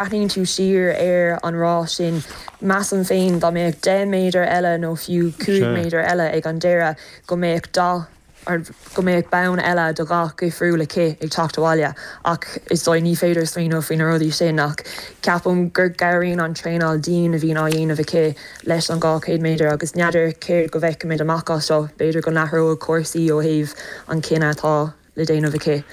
Breathnaíonn tú siar ar an rás sin. Measaim féin dá mbeadh deich méadar eile nó fiú cúig mhéadar eile ag an deireadh go mbeadh dath, go mbeadh bonn eile de dhath dhifriúil aici ag teacht abhaile. Ach is dóigh, ní féidir smaoineamh faoi na rudaí sin ach ceapaim gur gcabhraíonn an traenáil dian a bhíonn á dhéanamh aici leis an 200 méadar agus n'fheadar céard go bhfeicfimid amach as seo, b'fhéidir go n-athróidh cúrsaí ó thaobh an cinneadh atá le déanamh aici.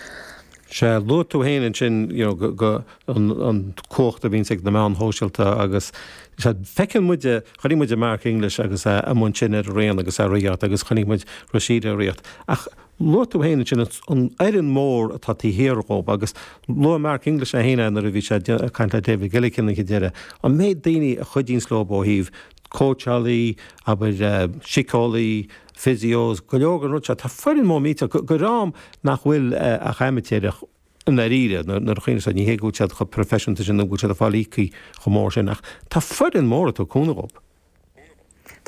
Sea, luaigh tú féin ansin, you know, go, go, an, an cumhacht a bhíonns ag na meáin shóisialta agus, sea, feiceann muid, chonaic muid Mark English agus é amuigh ansin ar an raon agus é ag ritheacht agus chonaic muid Rhasidat ag ritheacht ach luaigh tú féin ansin an, an fhoireann mhór atá taobh thiar dhóibh agus luaigh Mark English é féin nuair a bhí sé ag caint le David Gillick ag an deireadh, an méid daoine a chuidíonns leob ó thaobh cóitseálaí, abair, eh, síceolaí, physios, go leor den rud seo, tá foireann mór millteach, do, do dhream nach bhfuil ach amaitéarach i ndáiríre, nuair, nuair a chuimhníonns tú air, ní hé go bhfuil siad chomh proifisiúnta sin nó go bhfuil siad ag fáil íoctha chomh mór sin ach tá foireann mór ag tabhairt cúnamh dhób.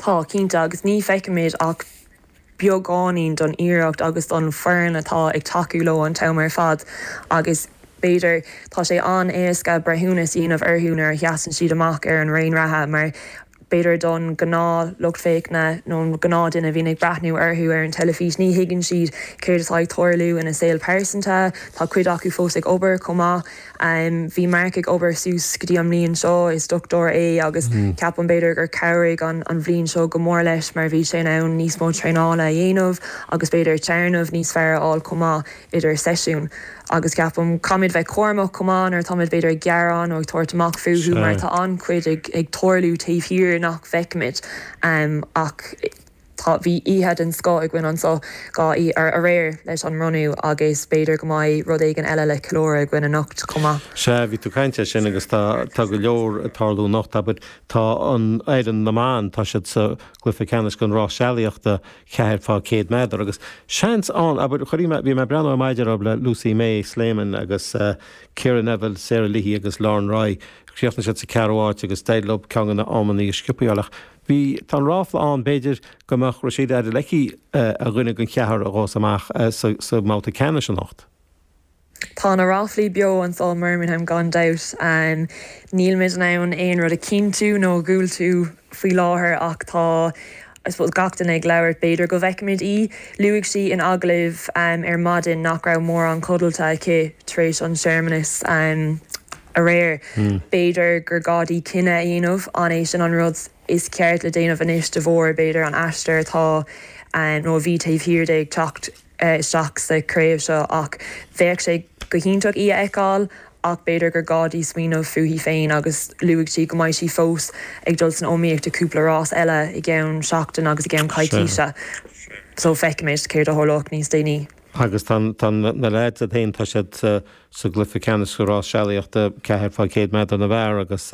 Tá, cinnte, agus ní feicimid ach beagáinín don iarracht agus don foireann atá ag tacú leo an t-am ar fad agus, b'fhéidir, tá sé an-éasca breithiúnas a dhéanamh orthu nuair a sheasann siad amach ar an raon reatha mar b'fhéidir don ghnáth lucht féachana nó an gnáth duine a bhíonn ag breathnú orthu ar an teilifís, ní thuigeann siad céard atá ag tarlú ina saol pearsanta. Tá cuid acu fós ag obair chomh maith. Bhí Mark ag obair suas go dtí an mbliain seo, is dochtúir é agus ceapaim b'fhéidir gur cabhraigh an bhliain seo go mór leis mar bhí sé in ann níos mó traenála a dhéanamh agus b'fhéidir téarnamh níos fearr a fháil chomh maith. idir seisiúin agus ceapaim, caithfimid bheith cúramach chomh maith nuair atáimid b'fhéidir ag gearán nó ag tabhairt amach fúthu mar tá an-chuid ag tarlú taobh thiar nach bhfeicimid ach tá, bhí oíche den scoth againn anso, gaa, aréir leis an mbronnadh agus b'fhéidir go mbeidh rud éigin eile le ceiliúradh againn anocht chomh maith. Sea, bhí tú ag caint air sin agus tá, tá go leor ag tarlú anocht, abair, tá an fhoireann na mban, tá siad sa gcluiche ceannais den rás sealaíochta ceathair fá chéad méadar, agus seans ann, abair, chuirfidh mé, bhí mé ag breathnú ar maidin a raibh le Lucy-May Sleeman agus Ciara Neville, Sarah Leahy agus Lauren Roy, chríochnaigh siad sa cheathrú áit agus d'éirigh leo ceann de na hamannaí is sciobtha a fháil ach bhí, tá an ráfla ann, b'fhéidir, go mbeadh Rhasidat Adeleke ar dhuine den cheathrar a ghabhfas amach sa mbabhta ceannais anocht. Tá na ráflaí beo anso i mBirmingham gan dabht. Nílimid in ann aon rud a chinntiú nó a dhiúltú faoi láthair ach tá I suppose gach duine ag labhairt, b'fhéidir go bhfeicfimid í. Luaigh sí in agallamh ar maidin nach raibh mórán codlata aici tar éis an tsearmanais aréir. B'fhéidir gur gá di cinneadh a dhéanamh, an é sin an rud is ceart le déanamh anois de bharr, b'fhéidir, an aistear atá nó a bhí taobh thiar di ag teacht isteach sa chraobh seo ach bheadh sé go hiontach í a fheiceáil ach b'fhéidir gur gá di smaoineamh fúithi féin agus luaigh sí go mbeidh sí fós ag dul san iomaíocht i gcúpla rás eile i gceann seachtain agus i gceann coicíse so feicfimid céard a tharlóidh níos déanaí. Agus tá na leaids istigh, tá siad. sa gcluiche ceannais sa rás sealaíochta, ceathair faoi cheithre chéad meadar na bhfear agus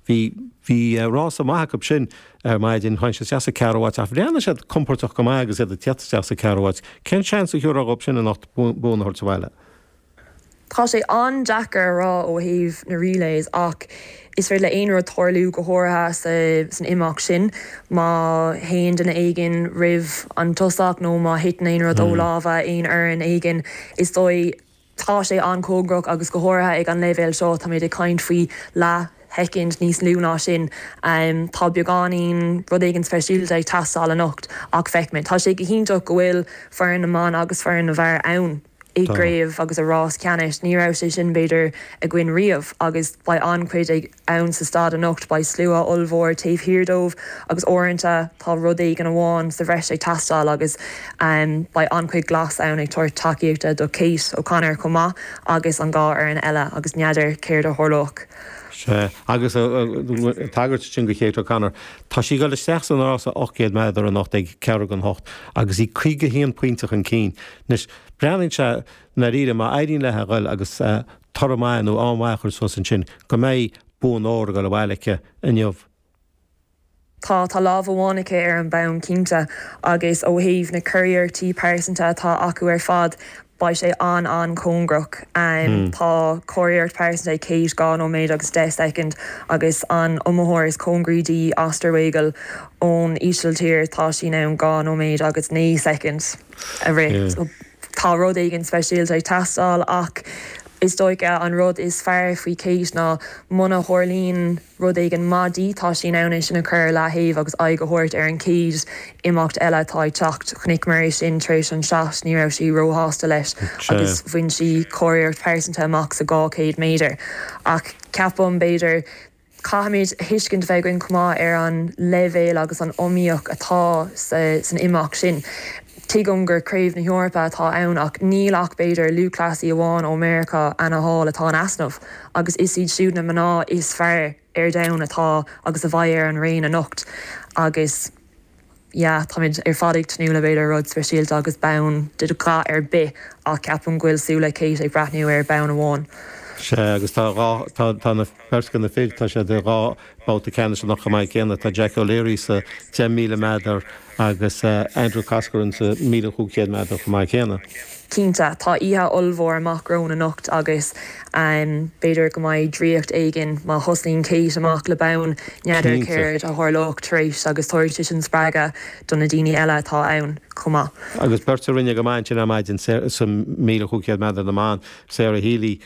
bhí, bhí rása maith acu sin ar maidin, tháinig siad isteach sa ceathrú háit ach bhreathnaigh siad compordach go maith agus iad ag teacht isteach sa ceathrú háit. Cén seans a thiúrfá dhóibh sin anocht bonn a thabhairt abhaile? Tá sé an-deacair a rá ó thaobh na relays is féidir le aon rud tarlú go háirithe sa, san imeacht sin. Má théann duine éigin roimh an tosach nó má thiteann aon rud ó lámha aon fhoireann éigin is dóigh, Tá sé an-chóngarach agus go háirithe ag an leibhéal seo, táimid ag caint faoi leathshoicind níos lú ná sin. Tá beagáinín, rud éigin speisialta ag teastáil anocht ach feicfimid. Tá sé go hiontach go bhfuil foireann na mban agus foireann na bhfear ann i gcraobh agus i rás ceannais. Ní raibh sé sin, b'fhéidir, againn riamh agus beidh an-chuid ag. ann sa staid anocht, beidh slua ollmhór taobh thiar dóibh agus uaireanta tá rud éigin amháin sa bhreis ag teastáil agus beidh an-chuid glas ann ag tabhairt tacaíochta do Kate O'Connor chomh maith agus an dhá fhoireann eile agus n'fheadar céard a tharlóidh. Sea, agus an tagairt sin do Kate O'Connor, tá sí ag dul isteach san rása 800 meadar anocht ag ceathrú chun a hocht agus í 51 pointe chun cinn. Anois, breathnaíonn sé, i ndáiríre, má éiríonn léi a dhul agus. toradh maith nó an-mhaith a chur suas ansin, go mbeidh bonn óir ag dul abhaile aici inniu. Tá lámh amháin aici ar an mbonn, cinnte, agus ó thaobh na curiarrachtaí pearsanta atá acu ar fad, beidh sé an-an-chóngarach. Tá curiarracht pearsanta ag Kate, dhá nóiméad agus deich soicind, agus an iomaitheoir is cóngaraí di, Oosterwegel ón Ísiltír, tá sí in ann dhá nóiméad agus naoi soicind. a rith. Tá rud éigin speisialta ag teastáil ach is dóiche an rud is fearr faoi Kate ná muna tharlaíonn rud éigin maith di, tá sí in ann é sin a chur ar leathaobh agus aghaidh a thabhairt ar an chéad imeacht eile atá ag teacht. Chonaic muid é sin tar éis an shot, ní raibh sí róshásta leis agus bhain sí curiarracht pearsanta amach sa 200 méadar. Ach ceapaim, b'fhéidir, Caithfimid a thuiscint a bheith againn chomh maith ar an leibhéal agus an iomaíocht atá san imeacht sin. Tuigim gur Craobh na hEorpa atá ann ach níl ach b'fhéidir lúthchleasaí amháin ó Meiriceá, Anna Hall, atá in easnamh agus is iad siúd na mná is fearr ar domhan atá agus a bheidh ar an raon anocht agus, Yeah, táimid ar fad ag tnúth le b'fhéidir rud speisialta agus bonn de dhath ar bith, ach ceapaim go bhfuil súile Kate ag breathnú ar bhonn amháin. Sea, agus tá dhá, tá, tá beirt de na fir, tá siad i dhá bhabhta ceannais anocht chomh maith céanna, tá Jack O'Leary sa 10,000 meadar agus Andrew Coscoran sa 1,500 meadar chomh maith céanna. Cinnte, tá oíche ollmhór amach romhainn anocht agus b'fhéidir go mbeidh draíocht éigin má thosnaíonn Kate amach le bonn, n'fheadar céard a tharlóidh tar éis agus tabharfaidh sé sin spreagadh do na daoine eile atá ann chomh maith. Agus beirt a rinne go maith ansin ar maidin, sa mhíle chúig chéad meadar na mban, Sarah Healy,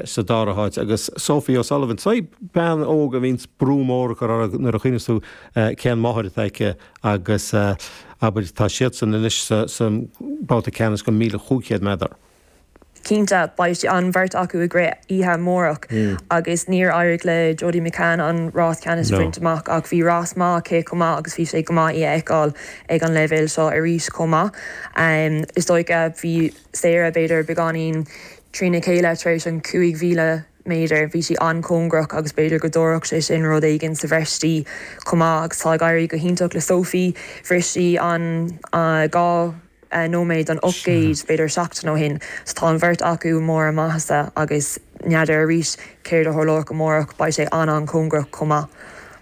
sa dara háit, agus Sophie O'Sullivan, sin bean óg a mbíonns brú mór á chur uirthi nuair a chuimhníonns tú cén mháthair atá aici, agus abair, tá siadsan anois sa mbabhta ceannais don 1,500 meadar. Cinnte, beidh siad an bheirt acu ag rith oíche amárach, agus níor éirigh le Jodie McCann an rás ceannais a bhaint amach, ach bhí rás maith aici chomh maith, agus bhí sé go maith í a fheiceáil ag an leibhéal seo arís chomh maith. Is dócha, bhí. Sarah, B'fhéidir beagáinín trína chéile tar éis an chúig mhíle méadar. Bhí sí an-chóngarach agus b'fhéidir go dtabharfadh sé sin rud éigin sa bhreis di chomh maith. Agus tá ag éirí go hiontach le Sophie. Bhris sí an dhá nóiméad don ocht gcéad b'fhéidir seachtain ó shin. So tá an bheirt acu i mbarr a maitheasa agus n'fheadar arís céard a tharlóidh amárach. Beidh sé an-an-chóngarach chomh maith.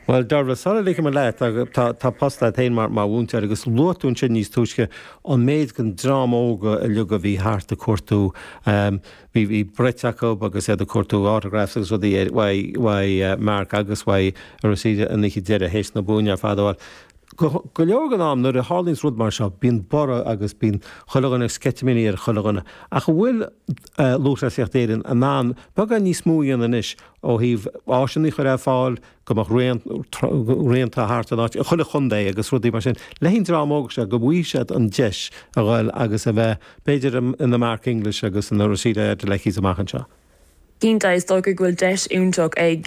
Bhuel, Deirbhile, sula ligfidh mé leat, tá post agat féin mar mhúinteoir, agus luaigh tú ansin níos túisce an méid den dream óg uilig a bhí thart ag cuartú, bhí brait acu agus iad ag cuartú autographs agus rudaí uaidh Mark agus uaidh Rhasidat an oíche deiridh théis na buanna ar fad. Bhuel, go leor den am, nuair a tharlaíonns rud mar seo, bíonn borradh agus bíonn chuile dhuine, sceitimíní ar chuile dhuine. Ach an bhfuil Lúthchleasaíocht Éireann in ann beagán níos mó a dhéanamh anois ó thaobh áiseanna a chur ar fáil, go mbeadh raonta thart an áit, in chuile chontae agus rudaí mar sin. Le haghaidh an dream óga seo, go bhfaighidh siad an deis a dhul agus a bheith, b'fhéidir, ina Mark English agus ina Rhasidat Adelekes amach anseo. Cinnte, is dócha go bhfuil deis iontach ag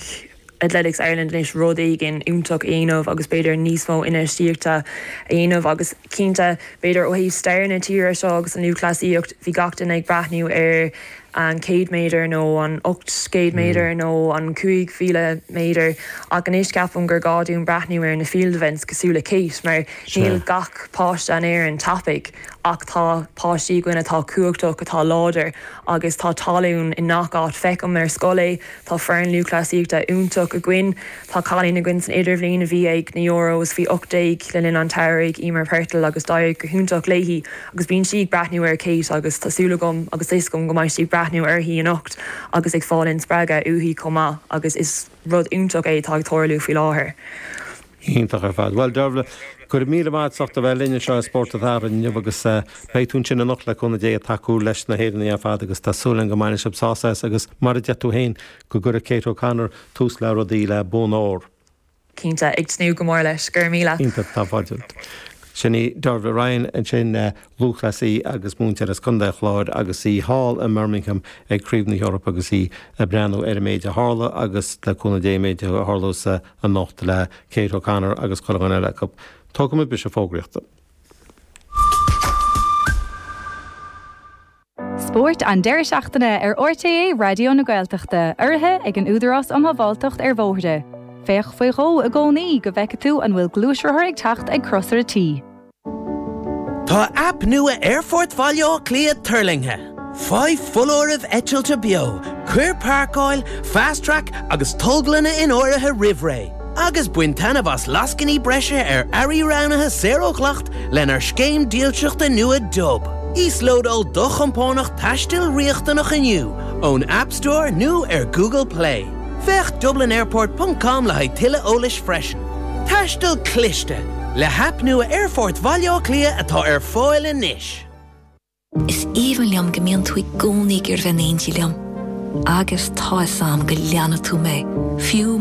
Athletics Ireland anois rud éigin iontach a dhéanamh agus b'fhéidir níos mó infheistíochta a dhéanamh agus cinnte, b'fhéidir, ó thaobh stair na tíre seo agus an lúthchleasaíocht, bhí gach duine ag breathnú ar. an 100 méadar nó an 800 méadar nó an 5,000 méadar ach anois ceapaim gur gá dúinn breathnú ar na field events cosúil le Kate mar níl gach páiste in Éirinn tapaidh ach tá páistí againn atá cumhachtach, atá láidir agus tá tallann i ngach áit. Feicim ar scoil é. Tá foireann lúthchleasaíochta iontach againn. Tá cailín againn san idirbhliain a bhí ag na Euros faoi 18 le linn an tsamhraidh, Eimear Purtill, agus d'éirigh go hiontach léi agus bíonn sí ag breathnú ar Kate agus tá súil agam agus tá a fhios agam go mbeidh sí ag breathnú uirthi anocht agus ag fáil an-spreagadh uaithi chomh maith agus is rud iontach é atá ag tarlú faoi láthair. Iontach ar fad. Bhuel, Dervla, go raibh míle maith agat a bheith linn anseo i Spórt an Tsamhraidh inniu agus beidh tú ansin anocht le cúnamh Dé ag tacú leis na hÉireannaigh ar fad agus tá súil againn go mbainfidh sibh sásamh as agus mar a deir tú féin, go gcuirfidh Kate O'Connor tús le rudaí le bonn ór. Cinnte. Ag tnúth go mór leis. Go raibh míle. Iontach. Tá fáilte romhat. Sin í Dervla Ryan ansin, lúthchleasaí agus múinteoir as Contae an Chláir agus í thall i mBirmingham ag Craobh na hEorpa agus í ag breathnú ar an méid a tharla agus le cúnamh Dé an méid a tharlós sa anocht le Kate O'Connor agus chuile dhuine eile acu. Tógfaidh muid briseadh fógraíochta. Spórt an deireadh seachtaine ar RTÉ Raidió na Gaeltachta, urraithe ag an Údarás um Shábháilteacht ar Bhóithre. Féach faoi dhó i gcónaí go bhfeicfidh tú an bhfuil gluaisrothar ag teacht ag crosaire T. Tá aip nua Aerfort Bhaile Átha Cliath tuirlingthe. Faigh foláirimh eitilte beo, cuir Páirceáil, Fast Track agus Tolglanna in áirithe roimh ré, agus bain taitneamh as lascainí breise ar earraí roghnaithe saor ó dhleacht lenár scéim dílseachta nua Dub. Íoslódáil do chompánach taistil riachtanach inniu ón App Store nó ar Google Play. Féach dublinairport ponc com le haghaidh tuilleadh eolais freisin. Taisteal Cliste, le haip nua Aerfort Bhaile Átha Cliath atá ar fáil anois. Is aoibhinn liom go mbíonn tú i gcónaí ag iarraidh bheith in éindí liom. Agus tá fhios a'm go leanfaidh tú mé, fiú